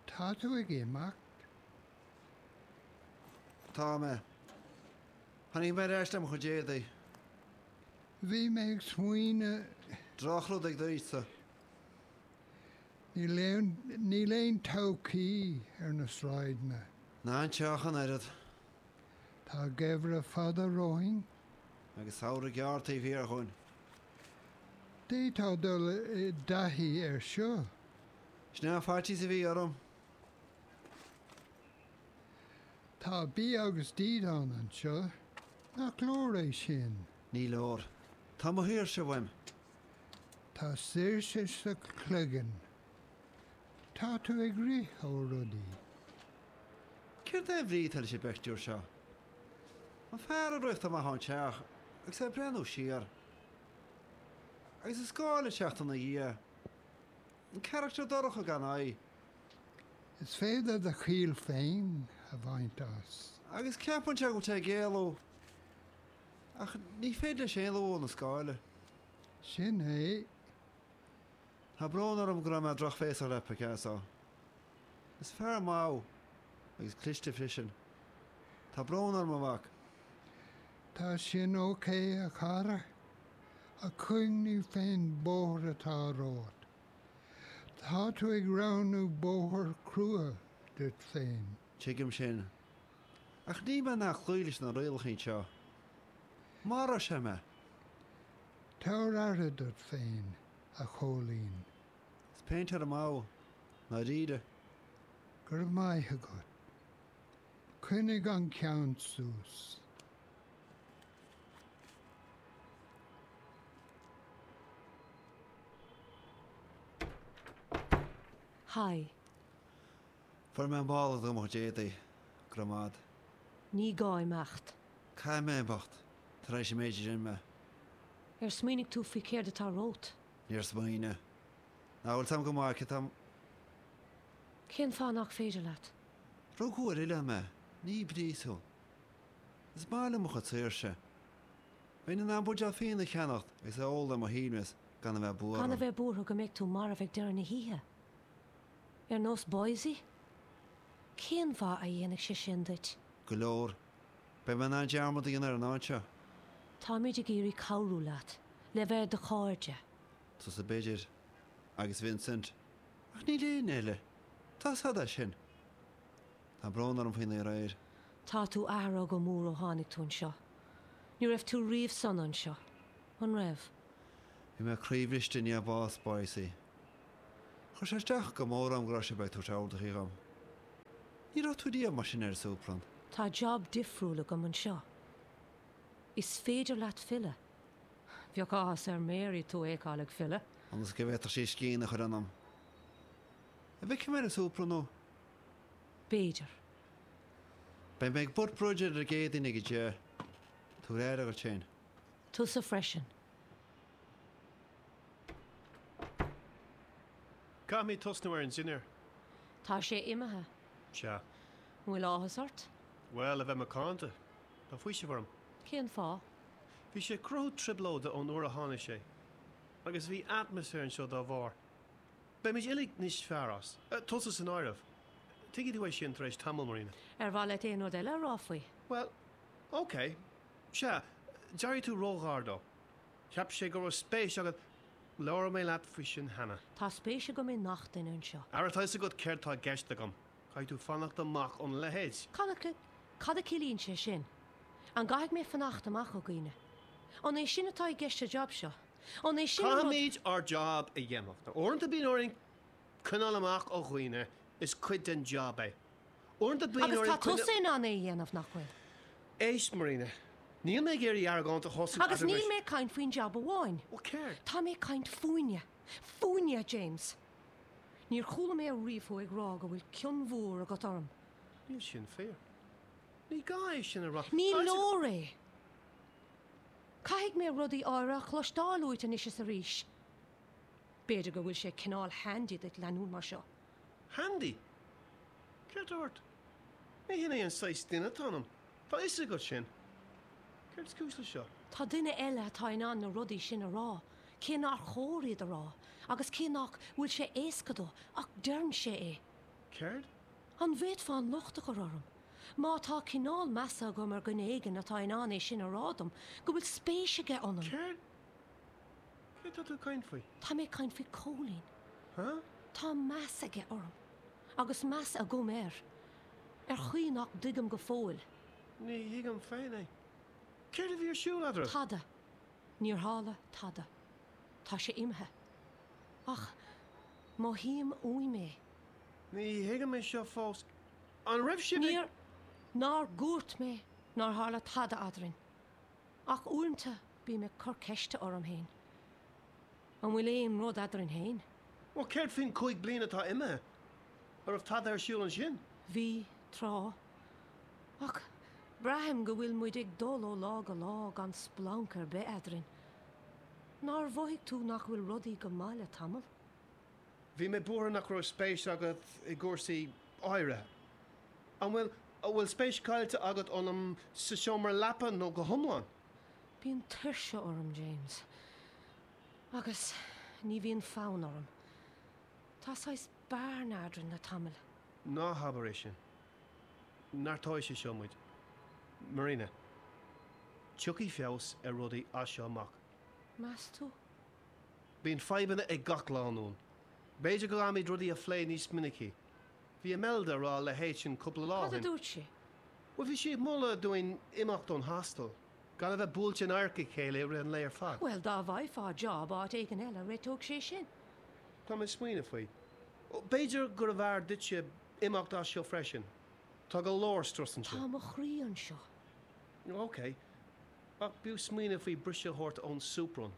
Tá tú ag imeacht? Tá mé. Tháinig mé ar ais le mo chuid éadaigh. Bhí mé ag smaoineamh. Drochrud ag d'aois-sa. Níl aon todhchaí ar na sráideanna. Ná sa teach ach an oiread. Tá geimhreadh fada romhainn. Agus samhradh gearr taobh thiar dhúinn. D'fhéadfá dul i dtaithí air seo. Sin an faitíos a bhí orm. Tá bia agus dídean anseo. Nach leor é sin? Ní leor. Tá mo shaoirse uaim. Tá saoirse sa chloigeann. Tá tú ag rith ó rudaí. Céard é an bhrí atá leis an bpictiúr seo? An fear a rith amach ón teach agus é ag breathnú siar agus a scáil ag teacht ina dhiaidh. An carachtar dorcha gan aghaidh. Is féidir do chiall féin a bhaint as. Agus ceapann sé go bhfuil sé ag éalú. Ach ní féidir leis éalú ó na scáilí. Sin é. Tá brón orm go raibh mé drochbhéasach le Picasso. Is fear maith agus cliste freisin. Tá brón orm, a mhac. Tá sin ok, a chara, ach cuimhnigh faoin mbóthar atá romhat. Tá tú ag roghnú bóthar crua duit féin. Tuigim sin. Ach níl mé in ann cloí leis na rialacha anseo. Mharódh sé mé! Tabhair aire duit féin. a Chóilín. Is péintéir maith thú, i ndáiríre. Go raibh maith agat. Coinnigh an ceann suas. Haigh. Fuair mé mála do mo chuid éadaí. Go raibh maith agat. Ní gá imeacht. Caithfidh mé imeacht. Tar éis an méid a rinne mé. Ar smaoinigh tú faoi céard atá romhat? Níor smaoinigh. Nach bhfuil Tom go maith? Cé hé Tom. Cén fáth nach féidir leat? Rugadh ar oileán mé. Ní i bpríosún. Is maith liom mo chuid saoirse. Bheinn in ann buidéal fíona a cheannach agus é a ól ar mo shuaimhneas gan a bheith buar... Gan a bheith buartha go mbeidh tú marbh ag deireadh na hoíche. Ar nós boise? Cén mhaith a dhéanfadh sé sin duit? Go leor. Beidh mé in ann dearmad a dhéanamh ar an áit seo. Táimid ag iarraidh cabhrú leat, le bheith inár gcairde. Tusa b'fhéidir. Agus Vincent. Ach níl éinne eile. Tá siad ar fad. Tá brón orm faoi aréir. Tá tú athraithe go mór ó tháinig tú anseo. Ní raibh tú riamh sona anseo. An raibh? Bhí mé croíbhriste i ndiaidh bás boise. Chuir sé isteach go mór orm go raibh sé ag tabhairt orduithe dhom. Ní raibh tú riamh mar sin ar an Superman. Tá job difriúil agam anseo. Is féidir leat filleadh. Bheadh áthas ar Mary tú a fheiceáil ag filleadh. Ionas go bhféadfadh sí scian a chur ionam. An bhfeicfidh mé ar an Superman tú? B'fhéidir. Beidh mé ag board meeting ar an gCéadaoin ag a deich. Tabhair aire duit féin. Tusa freisin. Caithfimid tosnú ar an dinnéar. Tá sé imithe. Sea. An bhfuil áthas ort? Bhuel, a bheith macánta. Tá faoiseamh orm. Cén fáth? Bhí sé ag cruthú trioblóide ón uair a tháinig sé. Agus bhí atmaisféar anseo dá bharr. Beimid uilig níos fearr as. Tusa san áireamh. Tuigfidh tú é sin tar éis tamaill, Marina. Ar mhaith leat aon rud eile a rá faoi? Bhuel, ok. Sea, d'éirigh tú ró-ghar dó. Cheap sé go raibh spéis agat. Labhair mé leat faoi sin cheana. Tá spéis agam i ngach duine anseo. Ara tá 'fhios agat céard tá i gceist agam. Caithfidh tú fanacht amach óna leithéid. Cad a ciallaíonn sé sin? An gcaithfidh mé fanacht amach ó dhaoine? An é sin atá i gceist sa jab seo? Ó, caithfimid ár jab a dhéanamh. Uaireanta bíonn orainn coinneáil amach ó dhaoine, is cuid den jab é. Agus tá tusa in ann é a dhéanamh, nach bhfuil? Éist, Marina. Níl mé ag iarraidh argóint a thosú agat anois. Agus níl mé ag caint faoin jab amháin. Bhuel, céard? Tá mé ag caint fúinne. Fúinne, a James. Níor chuala mé ariamh thú ag rá go bhfuil cion mhór agat orm. Níl sin fíor. Ní gá é sin a rá. Tá sé- Ní leor é. Caithfidh mé rudaí áirithe a chloisteáil uait anois is arís. B'fhéidir go bhfuil sé cineál handy duit leanúint mar seo. Handy? Céard tá ort? Ní shin é an saghas duine atá ionam, tá fhios agat sin. Céard is cúis le seo? Tá daoine eile atá in ann na rudaí sin a rá, cé nár chóir iad a rá, agus cé nách bhfuil sé éasca dó, ach deireann sé é. Céard? An bhféadfá an locht a chur orm, má tá cineál measa agam ar dhuine éigin atá in ann é sin a rá dom, go bhfuil spéis aige ionam? Céard? Cé tá tú ag caint faoi? Tá mé ag caint faoi Cóilín. Huh? Tá meas aige orm. Agus meas agam air. Ar chaoi nach dtuigim go fóill. Ní thuigim féin é. Céard a bhí ar siúl eadraibh? Tada. Níor tharla tada. Tá sé imithe. Ach mothaím uaim é. Ní thuigim é seo fós. An raibh sibh ag. Níor. Nár dhúirt mé nár tharla tada eadrainn? Ach uaireanta bím ag cur ceiste orm fhéin, an bhfuil aon rud eadrainn fhéin? Bhuel, céard faoin cúig bliana atá imithe? An raibh tada ar siúl ansin? Bhí, tráth. Ach braithim go bhfuil muid ag dul ó lá go lá gan splanc ar bith eadrainn. Nár mhothaigh tú nach bhfuil rudaí go maith le tamall? Bhí mé buartha nach raibh spéis agat i gcúrsaí áirithe. An bhfuil? An bhfuil spéis caillte agat ionam sa seomra leapa nó go hiomlán? Bíonn tuirse orm, James. Agus ní bhíonn fonn orm. Tá saghas bearna eadrainn le tamall. Ná habair é sin. Neartóidh sé seo muid. Marina, tiocfaidh feabhas ar rudaí as seo amach. Meas tú? Bíonn fadhbanna ag gach lánúin. B'fhéidir go gcaithfimid rudaí a phlé níos minicí. Bhí Imelda ag rá le hÉtain cúpla lá ó shin. Cad a dúirt sí? Bhuel, bhí sí ag moladh dúinn imeacht ón hostel, gan a bheith buailte in adharc a chéile i rith an lae ar fad. Bhuel, dá bhfaighfeá job áit éigin eile, réiteodh sé sin. Tá mé ag smaoineamh faoi. B'fhéidir gurbh fhearr duitse imeacht as seo freisin. Tá go leor strus anseo. Tá mo chroí anseo. OK. Ach b'fhiú smaoineamh faoi bhriseadh a thabhairt ón soup run.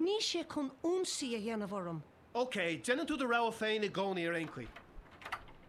Níl sé cun ionsaí a dhéanamh orm. OK, déanann tú do rogha féin i gcónaí ar aon chaoi.